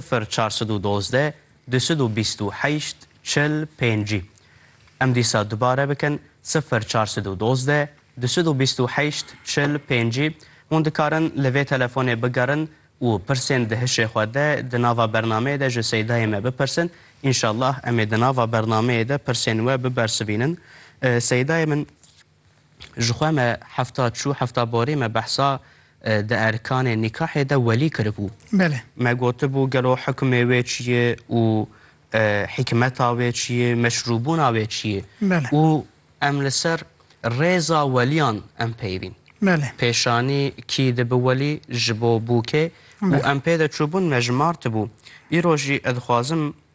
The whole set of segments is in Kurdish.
Sifir çar sed û dozdeh du sed û bîst û heşt çil pêncî Em dîsa dubare bikin sifir çar sed û dozdeh du sed û bîst û heşt çil pêncî Hûn dikarin li vê telefonê bigerin û pirsên di hişê xwe de di nava bernameyê de ji Seydayê me bipirsin. Înşallah em ê di nava bernameyê de pirsên we bibersivînin. Seydayê min. Jixwe me hefta çû hefta borê me behsa di erkanê nîkahê de welî kiribû. Me gotibû gelo hukmê wê çi ye û hîkmeta wê çi ye, meşrûbûna wê çi ye û em li ser rêza welîyan em peyivîn. Pêşanî kî dibi welî, ji bo bûkê û em pê de çûbûn me ji mar tibû. Îro jî ez dixwazim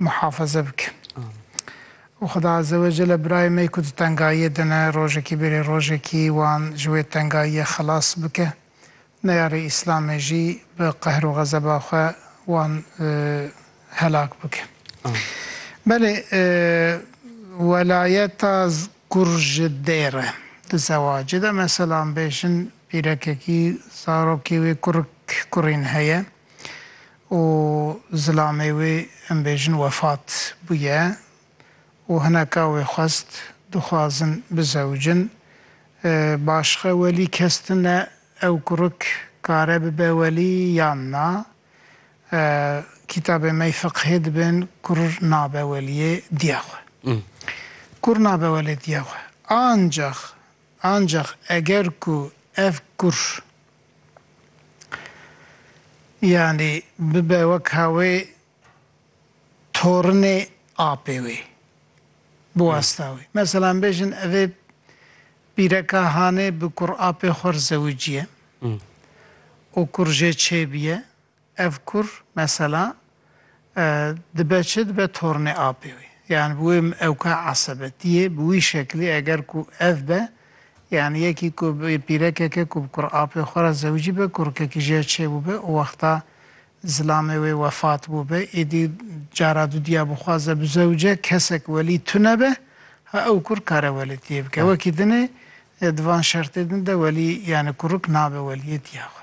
muhafaze bike. Û Xweda Azewecele birayê me ku di tengayiyê de ne rojekî bêrê rojekî wan ji wê tengayiyê xelas bike. Neyarê Îslamê jî bi qehr û xezeba xwe wan helak bike. Belê welayeta kur ji dêr e di zewacê de. Meselan bêjin pîrekekî zarokê wê kurik kurîn heye. û zilamê wê em bêjin wefat bûye û hineka wê xwest dixwazin bizewicin başixe welî kes tune ew kurik kare bibe welî yan na kîtabê mey fiqhê dibin kur nabe weliyê diya xwe kur nabe welê diya xwe ancax ancax eger ku ev kur Yanî bibe weka wê torinê apê wê bi wasta wê. Meselan bêjin evê bîreka hanê bi kur apê xwe ri zewiciye û kur jê çêbiye Ev kur mesela dibe çi dibe tornê apê wî. Yan bi wê ewka esebetiyê bi wî şeklî eger ku ev be yan yekî ku pîrekeke ku bi kur apê xwe re zewicî be kurkekî jê çêbûbe û wexta zilamê wê wefat bûbe êdî cara dudiya bixwaze bi zewce kesek welî tune be ha ew kur kare welêtiyê bike. Wekî din ê di van şertê din de welî yani kuruk nabe weliyêtiya xwe.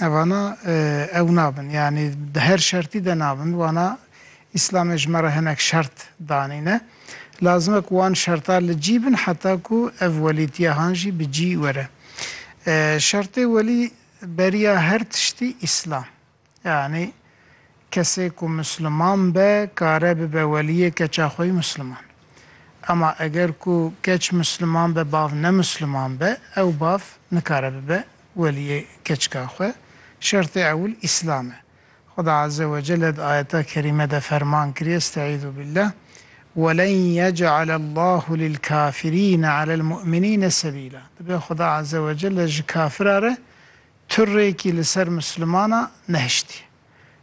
Evana ew nabin yanî di her şertî de nabin wana Îslamê ji me re hinek şert danîne. Lazim e ku wan şerta li cî bin heta ku ev welîtiyahan jî bi cî were. Şertê welî beriya her tiştî Îslam. Yanî Kesê ku misliman be kare bibe weliyê keça xweyî misliman. Ema eger ku keç misliman be bav ne misliman be ew bav nikare bibe weliyê keçika xwe. Şertê ewil îslam e. Xuda azze we celle di ayeta kerîme de ferman kiriye Estaizu billah Welen yec'alellahu lilkafirîne alelmu'minîne sebîla Dibe Xuda azze we celle ji kafira re tu rêkî li ser mislimana nehiştiye.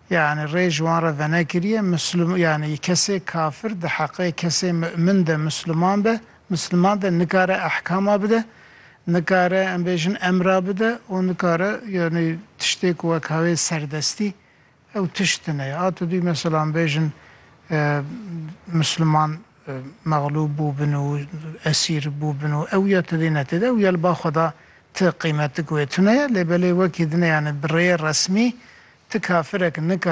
Yanî rê ji wan re venekiriye, Mislim yanî kesê kafir di heqê kesê mu'min de Misliman be, Misliman de nikare ehkama bide, nikare em bêjin emra bide û nikare yanî tiştê ku wek hawê serdestî ew tişt tune ye. A tu dûyî mesela em bêjin Misliman mexlûb bûbin û esîr bûbin û ew ya tedê netêde ew ya li ba xwe da ti qîmetik wê tune ye lê belê wekî dineyane bi rêyê resmî ti kafirek nika